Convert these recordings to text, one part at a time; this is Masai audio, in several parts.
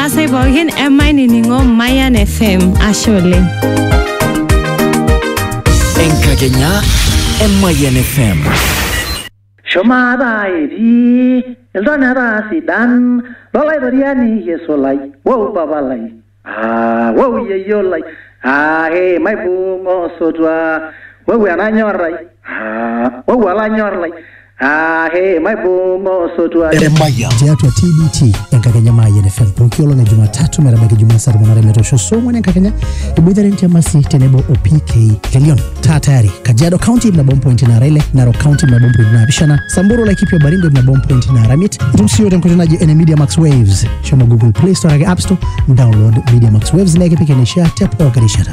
Asai pookin emainining'o Mayan FM. Ashe oleng. Enkakenya e Mayian FM. Shumata etii iltoneta sidan lolaitoriani Yesu lai, wou papa lai, ah, wou yeyio lai, ah, he, maibung osotua, wou enanyor lai, ah, wou olanyor lai, Emayian tiatua TBT enkakenya Mayian FM pooki olong e Jumatatu metabaiki Jumaa saa tomon are metoosho saa ong'wan enkakenya iboitare Ntiamasi tenebo o PK Lelion. Taa tayari Kajiado County ip nabo mpointi naara ile, Narok County ip nabo mpointi naapishana, Samburu Laikipia o Baringo ip nabo mpointi naara miet. Itum sii iyiook tenkoitoi naji ene Media Max Waves. Shomo Google Play Store ake App Store, download Media Max Waves naa ekipik eneishaa te pooki rishata.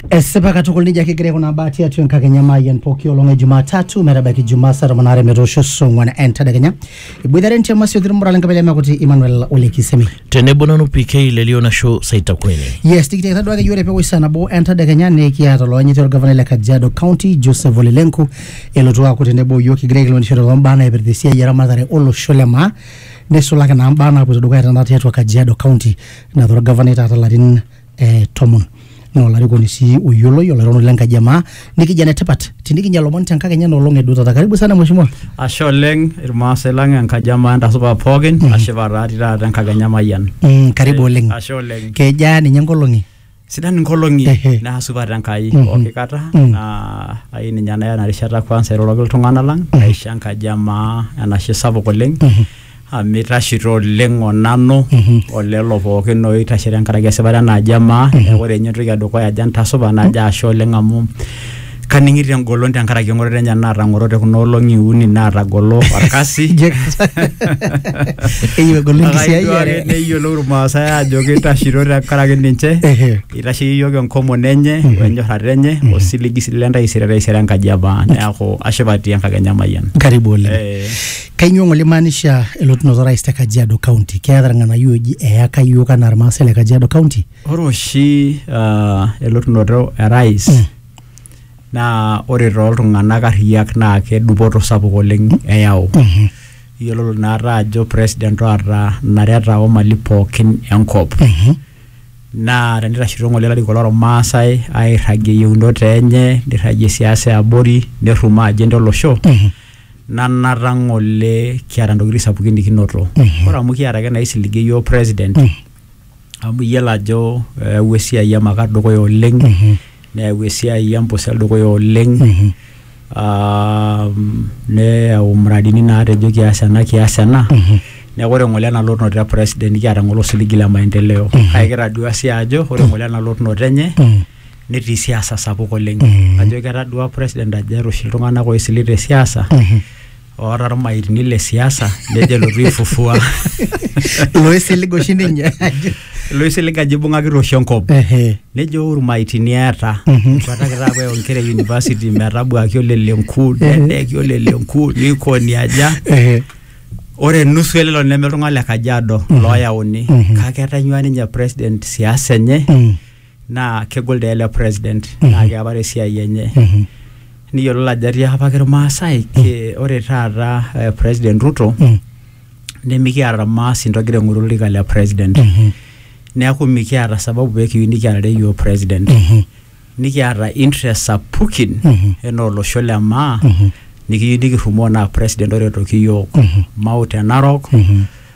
Esipa katukul nejia kigira aikunaa baa tiatua enkakenya maayian pooki olong e Jumatatu metabaiki Jumaa saa tomon aare metoosho saa ong'wan entadekenya. Iboitare ntiama sioki ilmuran lenkabila e Mekuti Emmanuel Ole Kisemi. tenebo nanu PK lelio nasho Saita Kweni. Yes, tikitiakita duake yiok tepewosh saa nabo entadekenya nikiata oloanyiti olgavanai le Kajiado County Joseph Ole Lenku elotu aaku tenebo o yiok kigira aikilikuanishore too mbaa naipirta esiai eramatare olosho le maa neisulaki naa mbaa naapoito dukuya tenakata tiatua Kajiado County naata olgavanai taata larin eh, tomon naa olarikoni sii oyioloi olairoroni lenkaji emaa nikija netipat tinikinya lomon tenkakenya nolong edutata karibu sana mheshimiwa ashe oleng irmaasai lang enkaji amaa entasupa pookin ashipa taati taata enkakenya emayian mm, karibu oleng ashe oleng kejaa ninye nkolong'i sidan inkolong'i Ehe. naa supat enkai Mhm. pooki kata Mm. naa ai ninye naya ena rishata kwanza airoroki iltung'anak lang aisho enkaji amaa enashe sapuk oleng amu itashito oleng onanu olelo pookin oitashe tenkaraki esipata enaaji emaa neeku ore ninye entoki edukuya ajo entasupa najo ashe oleng amu kaning'ito engolon tenkaraki eng'oroto enye naatang'orote kuna olong'i uni naatagolo orkasi Eyieu egolu Akaitwaki enkisiayiare. neyiolou irmaasai aajo kitashito tenkaraki ninche Ehe. itasheyie iyiook enkomono enye wenyorrata enye osiligi sii lentaisere taisere enkaji emaa neeku ashipa atii enkakenya mayian karibu oleng Eh. Kainyoo ng'ole imaanisha elotunoto orais te Kajiado County? Keeta irng'anayio ooji eyaka iyiook anaa irmaasai le Kajiado County? Ore oshi ah, elotunoto e rais naa ore tooltung'anak arriyiak naa kedupoto sapuk oleng eyau. Iyiololo naata ajo president oota nareta o mali pookin enkop. Naa tenitashito ng'ole ilarikok lormaasai airragie iyieunot enye, nirragie siasa e abori, nerrumoo agenda olosho nanata ng'ole kiata ntokitin sapukin nikinoto ore amu kiata ake naisiligie iyiook president amu iyiolo ajo eyawua esiai emakar dukuya oleng neyau esiai empusel dukuya oleng aa neyau muradini naatejo kias ena kias ena neeku ore ng'ole ena lotunoto e president nikiata ng'ole osiligi le maendeleo kake kitadua sii ajo ore ng'ole ena lotunoto enye netii siasa sapuk oleng Mhm. ajo ketadua president ajo eeta oshi iltung'anak oisili te siasa Mhm. oota irmaitini le siasa nejo elotu aifufua loisilig oshi ninye loisilig ajo ibung'akita oshi enkop Ehe. nejo "Oh, irmaitini eeta Mhm. etuataki taapa ewa inkera e university metabuaki olelenku nedeki olelenku nikoni aja Ehe. ore nusu elelo neme iltung'anak le kajiado Mhm. looyauni Mhm. kake etanyua ninye president siasa enye Mm. naa kegol dee ele president naa keapare esiai enye niyiololo ajo etii apake irmaasai ke- ore taata eh, president Ruto Mm. nemikiata irmaasi intogira aing'oru olorika le president Mhm. neeku mikiata sababu pee kiyieu nikiarare yioo president Mhm. nikiata interest sapukin Mhm. enaa olosho le maa Mhm. nikiyieu nikirrumoo naa president oretoki yiok Mhm. mau te narok Mhm.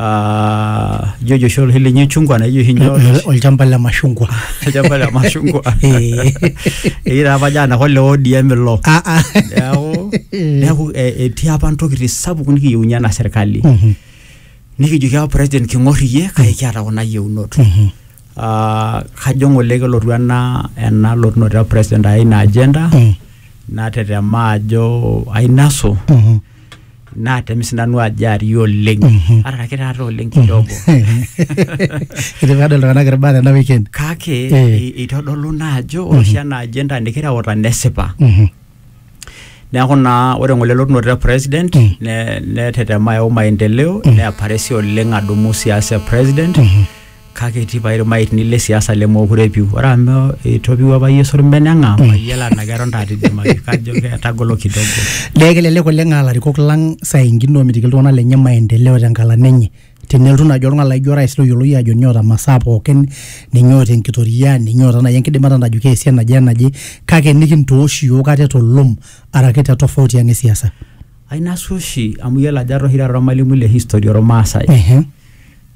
Ah, ijo ojo oshi olhili nye chungwa na ijo oshi nye Ol- olchamba le mashungwa olchamba le mashungwa Eh. egira apa jana hole ODM ilo Ah, ah. neaku neaku eh, etii apa ntokitin sapuk nikiyieunye ena serkali Mhm, nikijoki apa president king'or iyie kake kiata kuna yieunot mhm. Ah, kajo ng'ole kelotu ena ena lotunoto e president ai ina agenda Mm, natetema ajo ainasu mhm. naa temi sinanu ajo ari oleng Mhm. araki taata oleng kidogo Etii peedol iltung'anak irbaa tena weekend. kake Eh. e- eitodolu naa ajo ore oshi ena agenda nikireuta nesipa Mhm. neeku naa ore ng'ole elotunoto e president Mm. ne- netetema ayau maendeleo Mm. neaparesi oleng adumu siasa e president Mhm. kake etii pae irmaitni le siasa lemookure epiu ore amu itopiu apa yie sormen eng'am mayiolo enaa keton taata idimaki kajo ketagolo kidogo Dee kelelek oleng aa larikok lang saa ingine omitiki iltung'anak lenye maendeleo tenkalan enye tenelotu naaji oltung'ani laijo orais loyioloi ajo ninye oota masaa pookin ninye oota enkitoria ninye oota naaji enkidimata najo keesi enaje enaje kake nikintoosh iyiok ate tolom araki te tofauti ang e siasa. ainasu oshi amu iyiolo ajo ara oshi taata ormalimui le history ormaasai Ehe.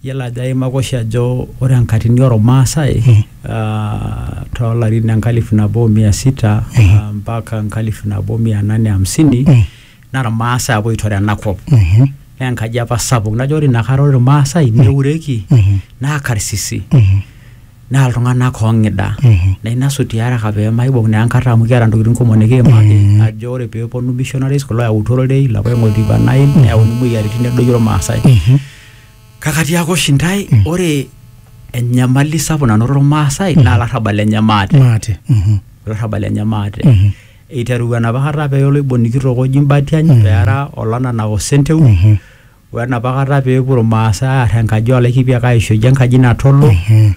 Iyiolo ajo aimaka oshi ajo ore enkatini oo ilmaasai too larin le nkalifu nabo o mia sita mpaka enkalifu nabo o mia nane hamsini naa ilmaasai apa oitore ena kop. Naa enkaji apa sapuk najo ore inakata ore ilmaasai neureki naa karsisi naa iltung`anak oo ng`ida. Naa ina suti pee eeta pee maibung naa enkata amu kiata ntokitin kumok nikiimaki ajo ore pee eponu missionaries kulo oyautua ororei lapa oing`oa oltikua Nile neyauni moyiaritin nedoyio ilmaasai. kakatiaka oshi ntae Mm. ore enyamali sapuk nanotore irmaasai naa larrabal lenye maate maate mhm, olarrabal lenye maate Mhm. eiterua enapa kata pee oloiboni kitok oji Mbatiany Mhm. peera olanana osenteu mhm, wenapa kata peepuo irmaasai aar enkaji oolaikipiak aisho eji enkaji natolo mhm,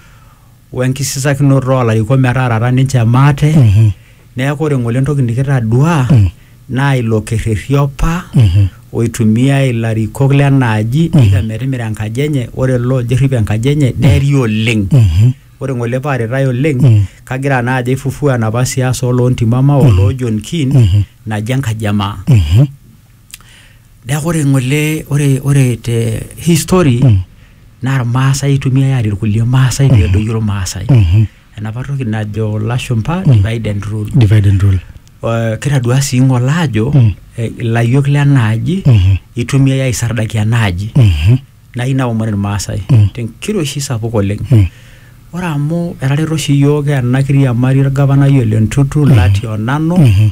we nkisisakinoto oo larikok metaarata ninche maate Mhm. neeku ore ng'ole entoki nikitadua Mm. naa ilo kerrerri opa Mhm. oitumiai ilarikok lenaaji eika metimira enkaji enye ore ilo ojo errip enkaji enye neri oleng Mhm. ore ng'ole paaritae oleng Mm. kagira naa ajo aifufua enapa siasa oloo ntimama oloo John Keane Mhm. naji enkaji emaa Mhm. neeku ore ng'ole ore ore te hii story Mm. naa irmaasai eitumiyai aarie irkulie maasai pee edoyio irmaasai Mhm. enapa toki najo lashumpa divide and rule divide and rule Eh, kitadua sii ng'ole aajo Mm. eh, ilayiok lenaaji Mhm. eitumiyai aisardaki enaaji Mhm. naa ina omon irmaasai Mm. tenkiroshi sapuk oleng Mm. ore amu etareto oshi iyiook ena kiriamari orgavanai ole ntutu lati onanu Mhm.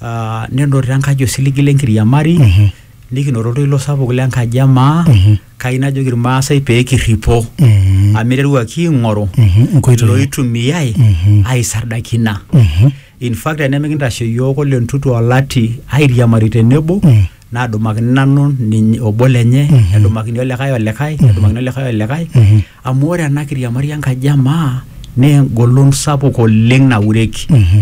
Ah, nenotito enkaji osiligi le nkiriamari Mhm. nikinoto oltoilo sapuk le nkaji e maa Mhm. kai najoki irmaasai pee kirripo Mhm. amu iteruaki aing'oru Mhm. Nkoitoi. looitumiai Mhm. aisardakina Mhm. in fact tenemikintashe iyiook ole ntutu olati airiamari tenebo Mm. nadumakini nanu ninye obo lenye Mhm. nedumakini olikae olikae nedumakini olikae olikae Mhm. amu ore ena kiriamari enkaji e maa naa engolon sapuk oleng naureki Mhm.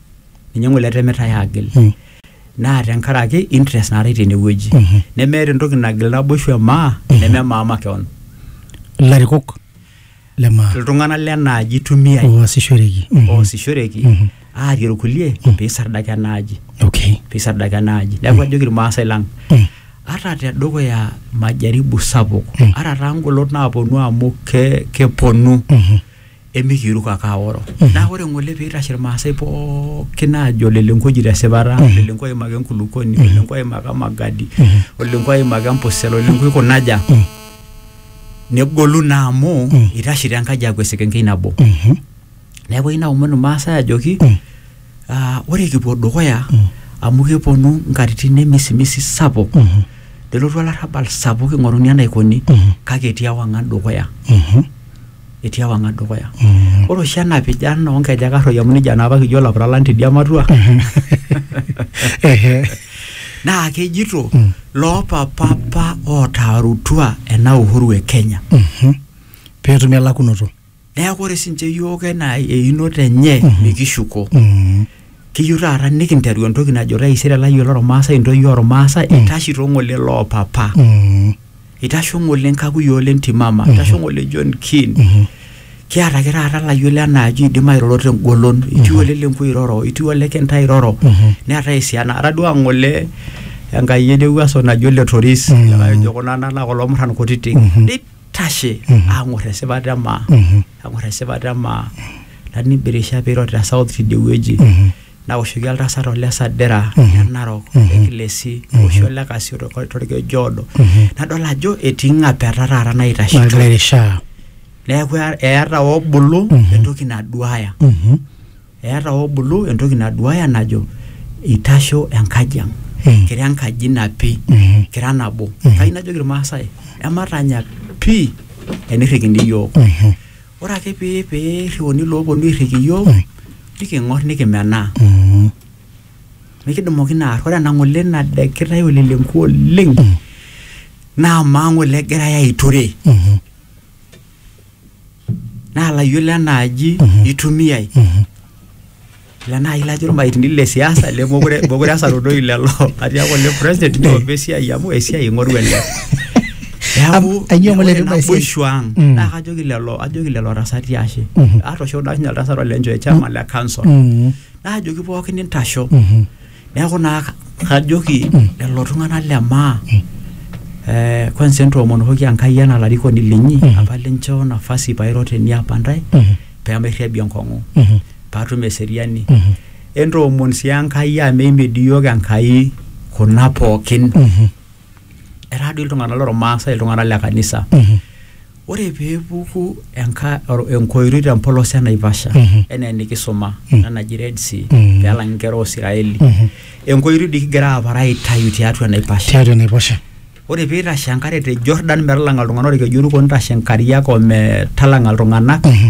ninye ng'ole etemitae aagil Mm. naa tenkaraki interest naatae tenewueji Mhm. nemeeta entoki nagil naboishu emaa neme maa makeon ilarikok le maa iltung'anak lenaaji itumiai oasishoreki Mhm. oosishoreki Mhm. aarie irkulie Mm. peisardaka enaaji okay peisardaka enaaji neeku ajoki irmaasai lang Mm. ata tedukuya majaribu sapuk Mm. ata taa ngolot naaponu amu ke, keponu Mhm. emikiiruk ake aoro naa ore ng'ole piitashe irmaasai pookin aajo lelenkoji tesipata lelenko oimaka enkulukoni olelenko oimaka magadi olelenko oimaka empusel olelenko ikunaja negolu naa amu itashito enkaji aaku esekenkei nabo neeku eyieu naomon irmaasai ajoki Ah, ore kipuo dukuya amu keponu nkatitin emisimisi sapuk nelotu olarrabal sapuk ing'oruni enaikoni kake etii ewang'an dukuya etii ewang'an dukuya ore oshi ena pijan oonkejek arroi amu nejia naa apa kijo ilapuralan tidia matua Ehe. naa kejito loopapa apa ootaarutua ena uhuru e Kenya Mhm. peetumi elakunoto neeku ore sinche yiok enaa einoto enye mikishuko Mm. kiyieu taata nikinteru entoki najo taisere layiolo ormaasai intoyie ormaasai itashito ng'ole loopapa Mm. itasho ng'ole nkakuyioo le ntimama itasho ng'ole John Keane Mhm. kiata ake taata layiolo enaaji oidim airoro tengolon itii ole lenku oiroro itii ole kintai oiroro Mhm. neetae esiana atadua ng'ole enkai ewuaso naji ole toris Mhm. likae ojo kuna nana kulo murran kutitik Mhm. Nei- tashe ang'or esipata emaa ang'or esipata emaa nanibirisha piiro te south tidie wueji nawoshoki oltasat ole sadira le narok le kilesi oshi ole kasio to- torkeju oodo nadol ajo etii ng'apeta taata naitashito nagira airishaa neeku eeta obulu entoki naduaya Mhm. Eata Obulu entoki naduaya najo eitasho enkaji ang. Kira enkaji napi, kira nabo. Kayieu najoki Ilmaasai ematanya pii enirrikini iyiook. Ore ake pee eirriuni ilooponu airriki iyiook niking'orr nikimenaa. Mikidumu oshi naa arr. Ore ena ng'ole nadekitae olelengua oleng naa amaa ng'ole egirai aiture naa layiolo enaaji itumiai ila naaji lajo irmaitini le siasa lemokure mokure esarudoi lelo atiaku ole president niomba esiai amu esiai ing'oru ele neeku Am- ainyoo ng'ole ore etum esiai? naboisho ang Mm. naa kajoki lelo ajoki lelo tasati ashe Mhm. atoosho daasinye oltasat olencho e chama le council Mm, naajoki pookin intasho mhm. Neeku naa kajoki lelo tung'anak le maa eh, kwanza entoomonokoki Enkai anaa larikoni linyi apa linchoo nafasi pairo teniapa ntae pemairriabie enkong'u paatum eseriani entoomon sii Enkai amu eimedi iyiook Enkai kuna pookin etaa doi iltung'anak lormaasai iltung'anak le kanisa ore pee epuku enka- or- enkoiroi te mpolos e naivasha Mhm. enaa enikisuma Mhm. ena naji red sea Mhm. pee elang inkera oosiraeli Mhm. enkoiroi dii kigira apar aitayu tiatua enaiposha tiatua enaiposha ore pee eitashe enkare te jordan metalanga iltung'anak orkeju oruko nitashe inkariak ometalanga iltung'anak Mhm.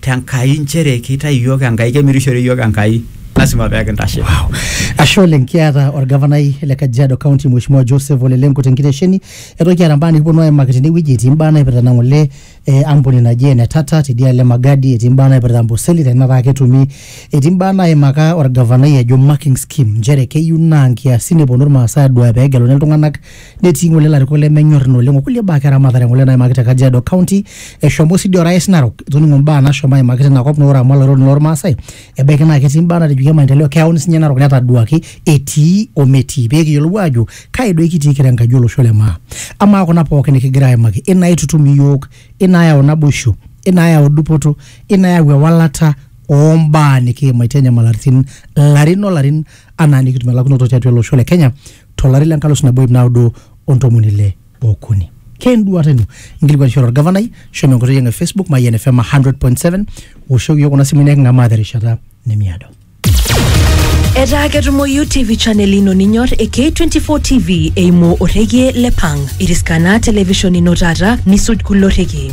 te Nkai nchere keitayu iyiook Enkai, kemirishore iyiook Enkai, lasima pee kintashe. Wow. Ashe oleng kiata orgavanai le Kajiado County Mheshimiwa Joseph Ole Lenku tenkitesheni. Eton kiata mbaa nikiponu aimaki tenewueji etii mbaa naipirta ina ng'ole eh, ampuni naji ene Tata tidialo e Magadi, etii mbaa naipirta Amboseli tenataa ketumi, etii mbaa naimaka orgavanai ejo marking scheme nchere keyieu naa nkiasin eponu irmaasai aduaya pee egeluni iltung'anak netii ng'ole ilarikok lemenyor ina oleng okulie baa ake eramatare ng'ole naimaki te Kajiado County eshomo sii dii orais Narok itoning'o mbaa nashomo aimaki tina kop naa ore amu olaironi lormaasai ebaiki naa ketii mbaa natejoki e maendeleo keyauni sinye Narok netaduaki etii ometii pee kiyiolou aajo kai doi kitii kira enkaji olosho le maa amaa kuna pookin nikigira aimaki inaitutum iyiook inaayau naboisho inaayau dupoto inaayau ewalata ombaa nikiimaitie inyamalaritin larin olarin anaa nikitum elakunoto tiatua ele osho le Kenya to lari le nkalusu nabo ip naudo o ntomoni ile okuni. Ke enduata ino? Inkilikuanishore olgavanai, shomo enkoitoi ang e Facebook Mayian FM 100.7 woshoki iyiook kuna simui neking'amaa terishata nemiado. Etaa ketumoyu TV channel ino ninyor e K24 TV eimu orrekie le Pang. Iriskana television ino taata nisuj kulo rrekie.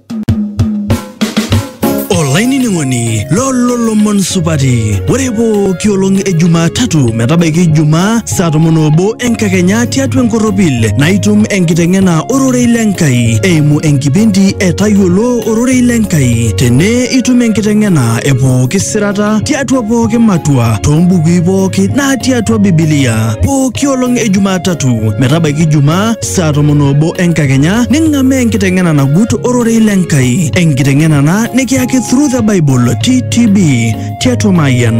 olainining'oni lolo lomon supati ore pooki olong e jumatatu metabaiki ijumaa saa tomon obo enkakenya tiatua enkorropil naitum enkiteng'ena ororei le nkai eimu enkipindi e tayiolo ororei le nkai tene itum enkiteng'ena e pooki sirata tiatua pooki matua toombukui pooki natii atua bibilia pooki olong e jumatatu metabaiki ijumaa saa tomon oobo enkakenya ning'amaa enkiteng'ena nagut ororei le Nkai, enkiteng'ena ena nikiyaki Through the Bible TTB tiatua Mayian.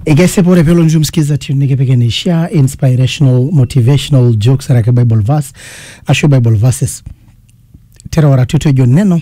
Ekesipa ore pelo nju msikiza tune nikipik eneishaa inspirational motivational jokes araki bible verse ashu bible verses terewara tutejo neno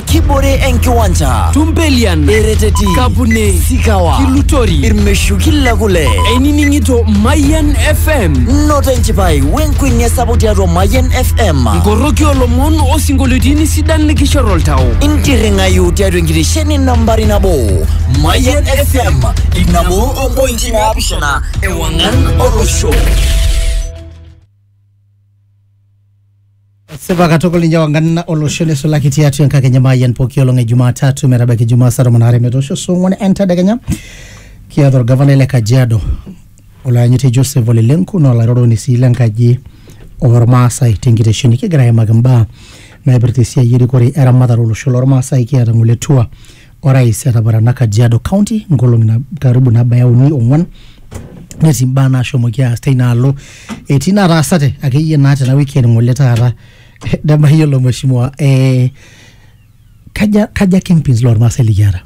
kibore enkiwanja Tumpelian, ereteti Kapune, sikawa Kilutori, irmeshuki le kule einining'ito Mayian FM, noto enchipai wenkuenia sapuk tiatua mayian fm nkoroki olomon osinkolioitin sidan likishor oltau. intirring'ayu tiatua enkitesheni nambari nabo mayian fm inabo ompointi naapishana ewang'an olosho Sipa katukul ninye wanganna olosho nisulaki tiatua enkakenya maayian pooki olong e Jumatatu metabaiki Jumaa saa tomon aare metoosho saa ong'wan entedekenya kiata orgavanai le Kajiado olayanyiti Joseph Ole Lenku naa olairoroni sii lenkaji ormaasai tenkitesheni kigira aimaki imbaa naipirta esiai erikore eramatare olosho lormaasai kiata ng'ole tua orais etaparana Kajiado County nkolong'i na- karibu nabaya uni ong'wan netii mbaa naashomoki aas teina alo etii nataasate akeyie naa tena wiki ng'ole taata nemayiolo mheshimiwa eh, kaja, kaja kingpins lormaasai likiata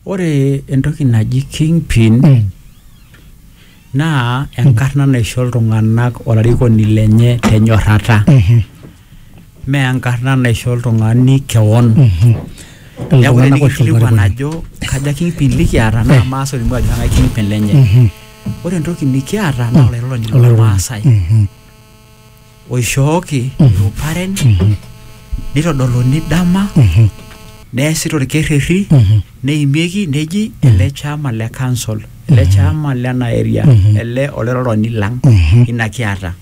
ore entoki naji kingpin Mm. Naa enkarna naisho iltung'ana olarikoni lenye te nyorrata, mme enkarna naisho oltung'ani kewon. Neaku tenikingilikuan ajo kaja kingpin likiata naa ilmaasai olimu ajo kang'ai kingpin lenye. Ore entoki nikiata naa olairoroni loo lmaasai. oishooki iruparen nitodoluni dama neesi torkerrerri neimieki neji ele chama le council ele chama lena area ele oleroroni lang ina kiata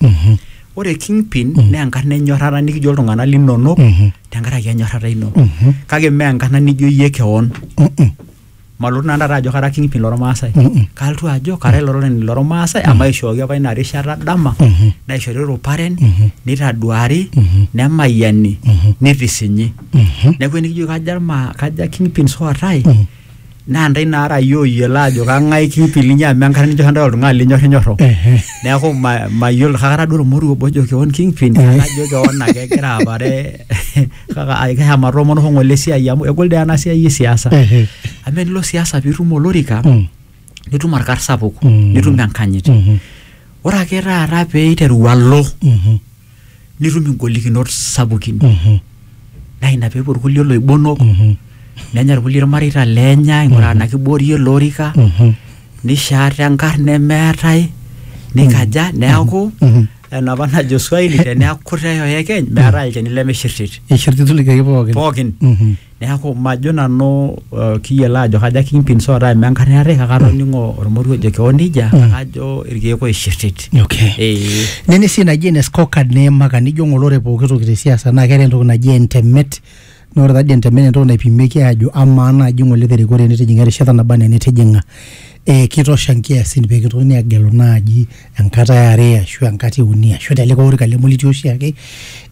ore kingpin naa enkarna enyorrata nikijo iltung'anak linonok tenkaraki enyorrata ino kake mee enkarna nijo iyie kewon malotu nanu taata ajo kara kingpin lormaasai Mm-mm. kalotu ajo kara ilo roreni lormaasai amu aishooki apa ina rishata dama Mhm. naishori ruparen Mhm. nitaduari Mhm. nemayiani Mhm. nitisinyi Mhm. neeku enikijo kaja irma kaja kingpin sootae Mhm. naa ntae naara yie oyiolo ajo kang'ae kingpin linyi amu enkata ninyor ntae oltung'ani linyor inyorro Ehe. neeku ma- mayiolo kakata duo ormoruo obo ojo kewon kingpin Eh. najo kewon ake egira apare kaka ai- keha matomono ho ng'ole esiai amu egol dee ena siai e siasa Ehe. amu enilo siasa piitum olorika Mm. nitum orkar sapuk Mm. nitum enkanyit Mhm. ore ake taata pee iteru alo Mhm. nitum ingolikinot sapukin Mhm. naa ina peepuo irkulie loibonok Mhm. nenya irkulie irmareita lenya ing'uraa ena kiboorie olorika Mhm. nishaata enkarna nemeetae nikaja neaku Mhm. enapa najo swahili teneaku kutae oyekeny meetae olchani lemishirtit Eishirtitu ilkeek pookin. pookin Mhm. neeku majo nanu uh, kiyiolo ajo kajo ake kimpin soota amu enkata eetae kake atoning'o ormoruo ojo kewon nejia Mm. kake ajo irkeek oishirtit Okay. Eh, Nene sii naji ene scorecard niimaka nijo ng'olore pooki toki te siasa naa keeta entoki naji entemet Naa ore taadii entemere entoki naipimieki aajo amaa naaji ng'ole te rikore nitijing'a erishata naba anaa enitijing'a ee kitosha nkiasin pee kitokini aagelu naaji enkata e are ashu enkata e uni ashu te likae orika leme olitii oshi ake.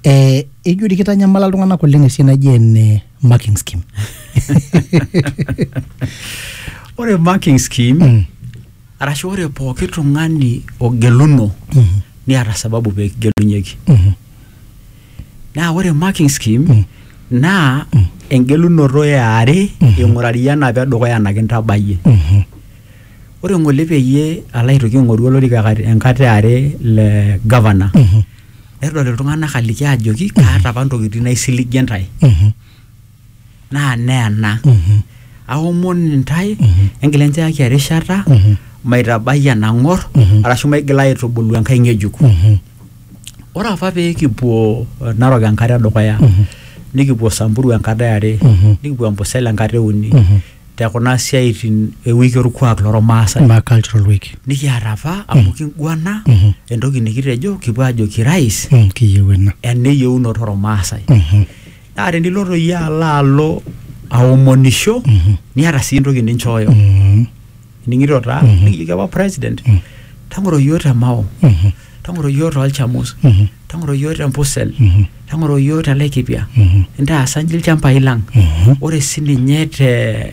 Ee ijo dii kitanyamala iltung'anak oleng' esiai naji ene marking scheme. Ore marking scheme arashu ore pooki tung'ani ogeluno neeta sababu pee kigelunyeki. naa ore marking scheme naa engelunoto eare ing'urari enapa edukuya ena kintabayie ore ng'ole peyie alo aitoki aing'oru olorika kat- enkata eare le governor nedol iltung'anak aliki ajoki kaata apa ntokitin naisiligie ntae naa neena aomon intae engila enchaki erishata maitabai enang'or arashu maigila aitubulu enkae ng'ejuk ore apa pee kipuo eh, narok enkata edukuya nikipuo samburu enkata eare nikipuo ambosel enkata euni te kuna siaitin ewiki orkuak lormaasai ma cultural week nikiata apa amu kinguana entoki nikitejo kipuo ajo kirais Mm, kiyieu ena ena eyieunoto ormaasai naa teniloto iyie alo alo aomonisho niata sii entoki ninchooyo Mhm. ning'ito taa Mhm. nikijoki apa president Mhm. tang'oro yioo te mao Mhm. tang'oro yioo tolchamus Mhm. tang'oro yioo te mpusel Mhm. tang'oro yioo te laikipia Mhm. intaasa nji ilchambai lang Mhm. ore sininye te